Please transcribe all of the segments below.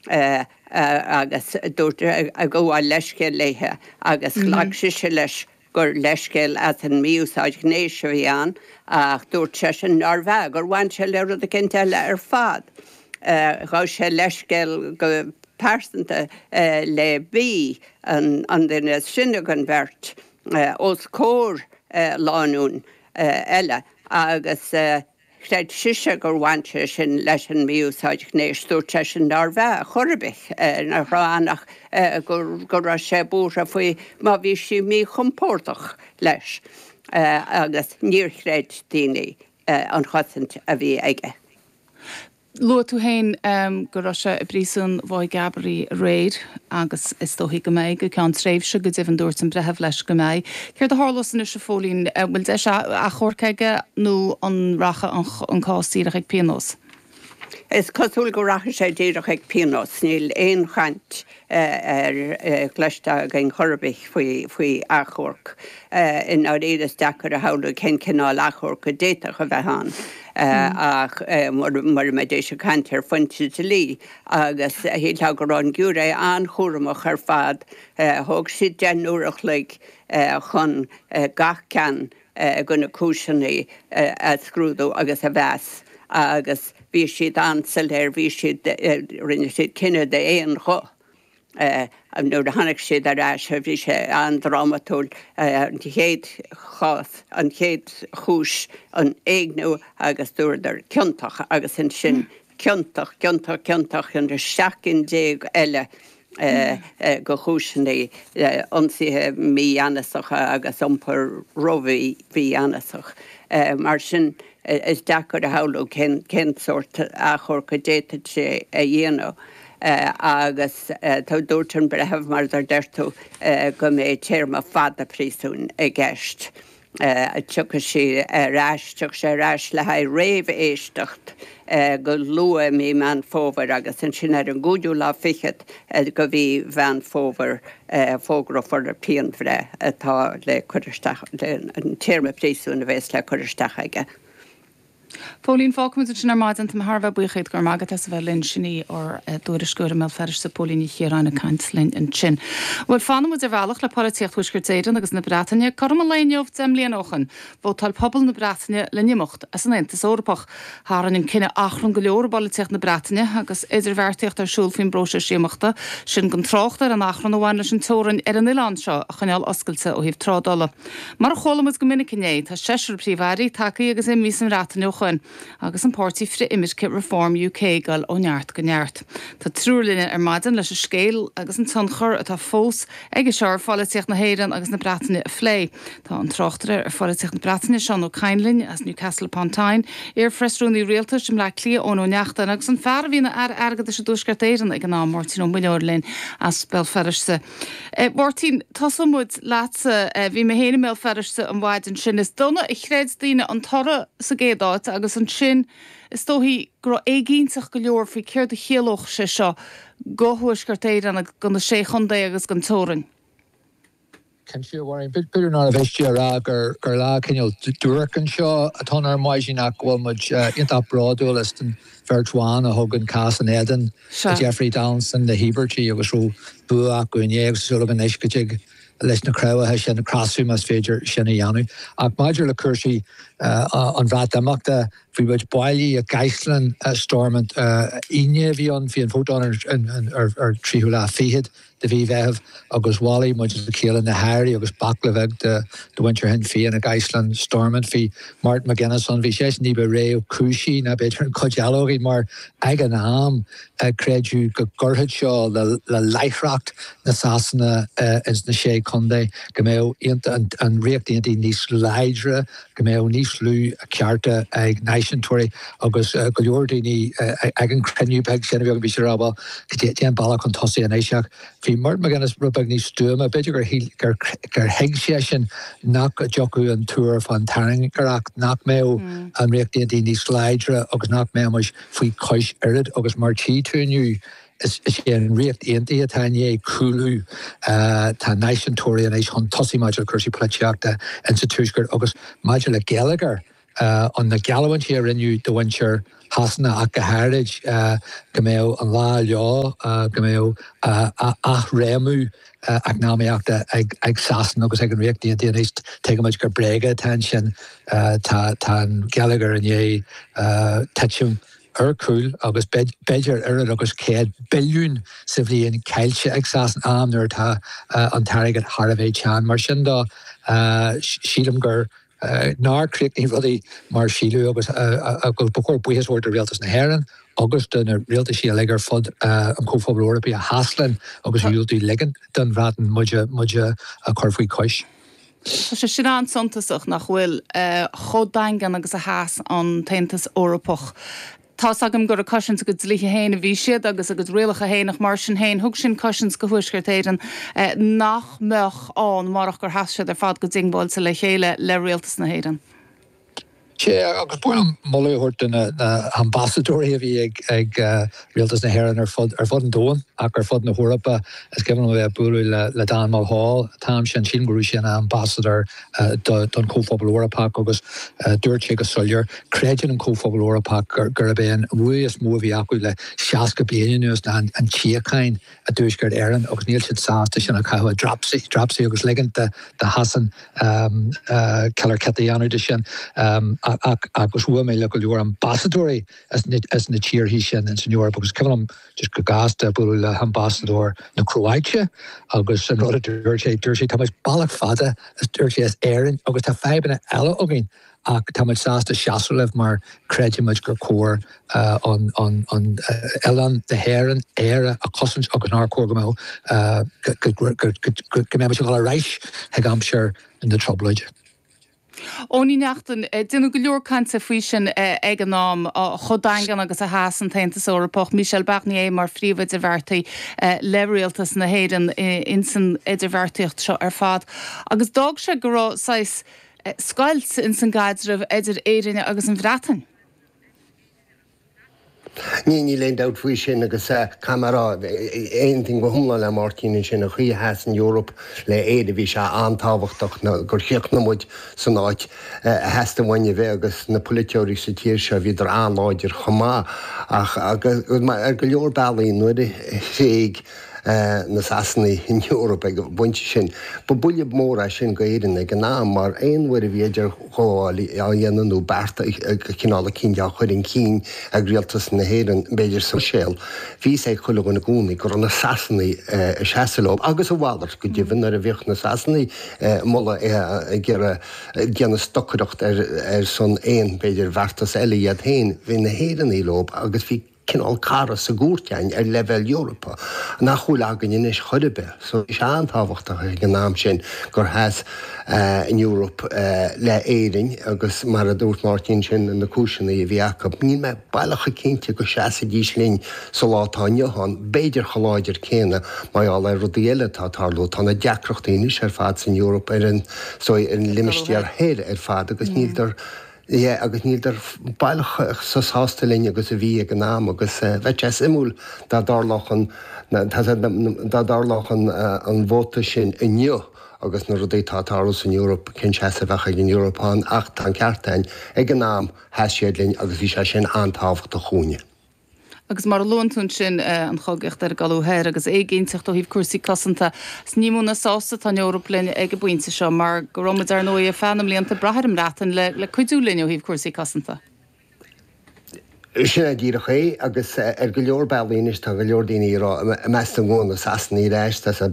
agus dúirt go bhfuil leithscéal léithe agus ghlac sise leis gur leithscéal as an mí-úsáid ghnéis a bhí ann ach dúirt seisean nárbh ea, gur bhain sé le rud éicint eile ar fad. Ghabh sé leithscéal go pearsanta le B, an duine is sine den bheirt, os comhair lánúin eile agus. Chreid sise gur bhain sé sin leis an mí-úsáid ghnéis. Dúirt seisean nárbh ea chor ar bith, nach raibh ann ach go raibh sé buartha faoi má bhí sí míchompordach leis agus níor chreid daoine an chosaint a bhí aige. Luaigh tú féin go raibh sé i bpríosún Mhaigh gCabraí aréir agus is dóichí go mbeidh go ceann tréimhse. Go deimhin dúirt an breitheamh leis go mbeidh. Céard a tharlós anois a Phóilín? An bhfuil deis achomhairc aige nó an rachaidh an cás díreach ag pionós? Is cosúil go rachaidh sé díreach ag pionós, níl aon chaint cloiste againn chor ar bith faoi faoi achomharc. I ndáiríre is deacair a shamhlú cén cineál achomhairc a d'fhéadfadh a bheith ann ach mara mbeidís ag caint ar phointe dlí agus shílfeá go raibh an giúiré an-chúramach ar fad. Thóg siad deich n-uair a chloig chun gach ceann de na cúiseannaí a scrúdú agus a mheas agus bhí siad an-soiléir, bhí siad, rinne siad cinneadh d'aon ghuth nuair a tháinig siad ar ais, bhí sé an-drámatúil an chéad chás, an chéad chúis, an éigniú agus dúradar ciontach agus ansin ciontach, ciontach, ciontach an 17 gcinn eile de chúiseannaí ionsaithe mígheanasacha agus iompar ró-mhí mhígheanasach. Mar sin, is deacair a shamhlú cén sórt achomharc a d'fhéadfadh sé a dhéanamh. Agus tá dúirt an Breitheamh, mar a deir tú, go mbeidh téarma fada príosúin i gceist. Tiocfaidh sé ar ais, tiocfaidh sé ar ais le haghaidh réamh-éisteacht go luath i mí Meán Fómhair agus ansin ar an gcúigiú lá fichead de mhí Mheán Fómhair fógrófar an phianbhreith atá le cur isteach, an téarma príosúin a bhéas le cur isteach aige. A Phóilín, fágfaimid ansin ar maidin. Tá mé thar a bheith buíoch díot. Go raibh maith agat as a bheith linn. Sin í ár dtuairisceoir i mBéal Feirste, Póilín Ní Chiaráin ag caint linn ansin. Bhuel, fanfaimid ar bhealach le polaitíocht Thuaisceart Éireann agus na Breataine. Cothrom an lae inniu deich mbliana ó shin, vótáil pobal na Breataine le n-imeacht as an Aontas Eorpach. Tharraing an cinneadh achrann go leor i bpolaitíocht na Breataine agus idirbheartaíocht ar siúl faoin bpróiseas imeachta sin gan trácht ar an achrann a bhain leis an teorainn ar an oileán seo a choinneáil oscailte ó thaobh trádála. Mar a chuala muid go minic inné, tá seisear Príomh-Aire tagtha agus imigh sa mBreatain ó shoin, agus an páirtí frith-imirce Reform UK ag dul ó neart go neart. Tá triúr linne ar maidin leis an scéal agus an tionchar atá fós aige seo ar pholaitíocht na hÉireann agus na Breataine a phlé. Tá an tráchtaire ar pholaitíocht na Breataine, Seán Ó Cainnlin as Newcastle upon Tyne, iar-Phreasrúnaí Rialtais i mBleá Cliath Eoin Ó Neachtain, agus an fear a bhí ina Aire Airgeadais i dTuaisceart Éireann ag an am, Máirtín Ó Muilleoir linn as Béal Feirste. Máirtín, Tosóidh muid leatsa. Bhí mé féin i mBéal Feirste an mhaidin sin. Is dona a chreid daoine an toradh sa gcéad áit agus ansin is dóichí go raibh éiginnteacht go leor faoi céard a chiallódh sé seo do Thuaisceart Éireann agus do na Sé Chontae agus don teorainn. Cinnte, a Mháirín, b'fhéidir nár mhiste a rá gur lá cineál duairc anseo atá ann ar maidin ach go bhfuil muid iontach bródúil as an bheirt bhan a thug an cás in éadan Sir Jeffrey Donaldson na híobartaigh agus go raibh bua acu inné agus tá súil agam anois go dtig leis na cneácha sin cneasú más féidir sin a dhéanamh. Ach maidir le cúrsaí an Bhreatimeachta, bhí muid bailithe i gCaisleán Stormont. Aoine a bhí ann, bhí an vótáil ar an tríú lá fichead. de mhí Mheithimh agus bhailigh muid le chéile na hairí agus baicle bheag de mhuintir Shinn Féin i gCaisleán Stormont. Bhí Martin McGuinness ann. Bhí seisean ní ba réchúisí ná b'fhéidir an chuid eile againn mar ag an am creideadh go gcuirfeadh seo le láithreacht na Sasana ins na Sé Chontae, go mbeadh an Ríocht Aontaithe níos láidre. go mbeadh níos lú cearta ag náisiúntóirí agus go leor daoine ag an cruinniú beag sin a bhí againn, bhí siad ag rá bhuel cad é an bealach chun tosaigh anois ach bhí Martin McGuinness rud beag níos stuama, b'fhéidir gur shíl, gur thuig seisean nach dtiocfadh an tuar fán tairngreacht, nach mbeadh an Ríocht Aontaithe níos láidre agus nach mbeimis faoi chois oiread agus mar a tchí tú inniu. Is é an Ríocht Aontaithe atá i ndiaidh cúlú. Tá náisiúntóirí anois chun tosaigh maidir le cúrsaí polaitíochta in sa tuaisceart agus maidir le geilleagar an na geallamhaintí a rinneadh do mhuintir Shasana ach go háirid go mbeadh an lá leo go mbeadh athréimniú eacnamaíochta ag Sasana agus ag an Ríocht Aontaithe anois. Tuigimid gur bréaga atá ansin. Tá an geilleagar i ndiaidh titim. ar cúl agus b'fhéidir oiread agus 100 billiún sa bhliain caillte ag Sasana, am nuair atá an t-airgead thar a bheith teann. Mar sin de, sílim gur, nár chríochnaigh rudaí mar síleadh agus agus ba chóir buíochas a thabhairt do Rialtas na hÉireann agus do na rialtaisí uilig ar fud an Chomhphobail Eorpaigh a sheas linn agus a dhiúltaigh ligean don Bhreatain muid a chur faoi chois. Tá sé sin an-suntasach, nach bhfuil? Chomh daingean agus a sheas an tAontas Eorpach. Tá's agam gur ag cosaint a gcuid dlíthe féin a bhí siad agus a gcuid rialacha féin ach mar sin féin thug sin cosaint do Thuaisceart Éireann nach mbeadh ann murach gur sheas siad ar fad go diongbháilte le chéile le Rialtas na hÉireann. Sea, agus b'fhearr liom moladh a thabhairt do na hambasadóirí a bhí ag Rialtas na hÉireann ar fud an domhain, ach ar fud na hEorpa. Is cuimhin liom a bheith ag bualadh le Dan Mulhall, tráth, is é ansin, go raibh sé ina ambasadóir don Chomhphobal Eorpach agus dúirt sé go soiléir, creideann an Comhphobal Eorpach gurb é an bua is mó a bhí acu le 60 bliain anuas ná an tsíocháin. i dTuaisceart Éireann agus níl siad sásta sin a chaitheamh i dtraip, dtraipisí, agus ligint do Shasain ciolar chiot a dhéanamh de sin agus bhuail mé le go leor ambasadóirí as na tíorthaí sin ins an Eoraip agus is cuimhin liom just go gasta bualadh le hambasadóir na Cróáite agus an rud a dúirt sé, dúirt sé tá muid bealach fada as dúirt sé as Éirinn agus tá fadhbanna eile againn ach tá muid sásta seasamh libh mar creidimid gur chóir an oileán na hÉireann, Éire, a chosaint agus nár chóir go mbeadh go mbeimis ag dul ar ais chuig aimsir na dTrioblóide. Eoin Ó Neachtain, déanadh go leor cainte faoi sin ag an am, chomh daingean agus a sheas an tAontas Eorpach, Michel Barnier mar phríomh-idirbheartaí le rialtas na hÉireann insan idirbheartaíocht seo ar fad agus d'fhág sé go raibh saghas scoilt ins an gcaidreamh idir Éirinn agus an Bhreatain. Ní, níl aon dabht faoi sin agus caithfidh mé a rá, aontaím go hiomlán le Máirtín ansin, an chaoi a sheas an Eoraip le Éire, bhí sé an-tábhachtach gur chríochnaigh muid san áit a theastaigh uainn a bheith agus na polaiteoirí sa tír seo, bhíodar an-láidir chomh maith ach ar go leor bealaí nuair a thréig. na Sasanaigh an Eoraip ag an bpointe sin. Ba buille mór é sin d'Éirinn ag an am mar aon uair a bhí idirghabháil á dhéanamh nó bearta de chineál eicínt á chur chun cinn ag rialtas na hÉireann, b'fhéidir sa Bhruiséil, bhí a fhios ag chuile dhuine i gcónaí go raibh na Sasanaigh ag seasamh leo. Agus a mhalairt go deimhin nuair a bhíodh na Sasanaigh ag moladh ag iarraidh déanamh stocaireacht ar son aon, b'fhéidir, beartas eile iad féin, bhí na hÉireannaigh leo agus bhí. cineál cara sa gcúirt ann ar leibhéal Eorpach nach bhfuil againn anois chor ar bith, so bhí sé an-tábhachtach ag an am sin gur sheas an Eoraip le Éirinn agus mar a dúirt Máirtín sin na cúiseanna a bhí acu, níl mé baileach cinnte go seasfaidís linn sa lá atá inniu ann, b'fhéidir chomh láidir céanna mar gheall ar rudaí eile atá ag tarlú, tá na deacrachtaí anois ar fad san Eoraip ar an, so ar an limistéar thoir ar fad agus níltear. Yeah agus níl siad baileach chomh sásta linn agus a bhí ag an am agus bheadh sé suimiúil dá dtarlódh an dá dtarlódh an vóta sin inniu agus na rudaí atá ag tarlú san Eoraip, cén seasamh a bheadh ag an Eoraip ann ach tá an ceart a'inn, ag an am sheas siad linn agus bhí sé sin an-tábhachtach dhúinne. agus mar a luann tú ansin, an chogaíocht ar an gcoladh thoir agus éiginnteacht ó thaobh cúrsaí cosanta. Ní mó ná sásta atá an Eoraip linn ag an bpointe seo, mar go raibh muid, ar ndóigh, ar feadh na mblianta ag brath ar an mBreatain le cuidiú linn ó thaobh cúrsaí cosanta. Sin é díreach é, agus ar go leor bealaí anois tá go leor daoine ag rá, i measc na Sasanach ar ais, is é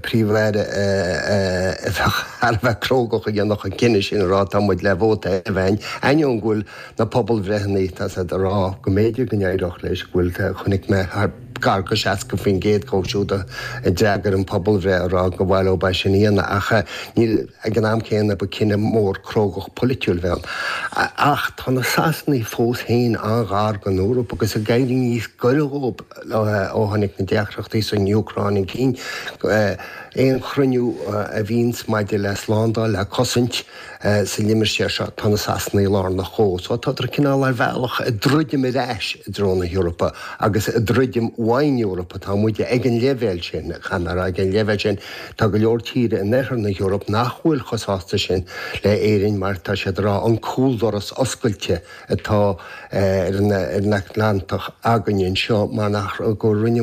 Príomh-Aire a bheadh thar a bheith crógach a dhéanfadh an cinneadh sin a rá tá muid le vóta a bheith againn, ainneoin go bhfuil Na pobalbhreitheanna, tá siad ag rá go mb'fhéidir go n-éireodh leis, go bhfuil, chonaic mé thar, gar go 60% dhíobh siúd a d'fhreagair an phobalbhreith ag rá go bhfaileodh bá sin Fhianna ach níl, ag an am céanna ba cinneadh mór crógach polaitiúil a bheadh ann. Ach tá na Sasanaigh fós fhéin an-ghar don Eoraip agus ag éirí níos gaire dhóibh ó tháinig na deacrachtaí san Úcráin chun cinn. Aon chruinniú a bhíonns maidir le slándáil is cosaint, Sa limistéar seo, tá na Sasanaigh lárnach so tádar cineál ar bhealach ag druidim ar ais i dtreo na hEorpa agus ag druidim ón Eoraip atá muid ag an leibhéal sin, caithfidh mé a rá, ag an leibhéal sin. Tá go leor tíre in oirthear na hEorpa nach bhfuil chomh sásta sin le Éirinn mar tá siad ag rá an cúldoras oscailte atá ar an Atlantach againn anseo mar nach, go rinne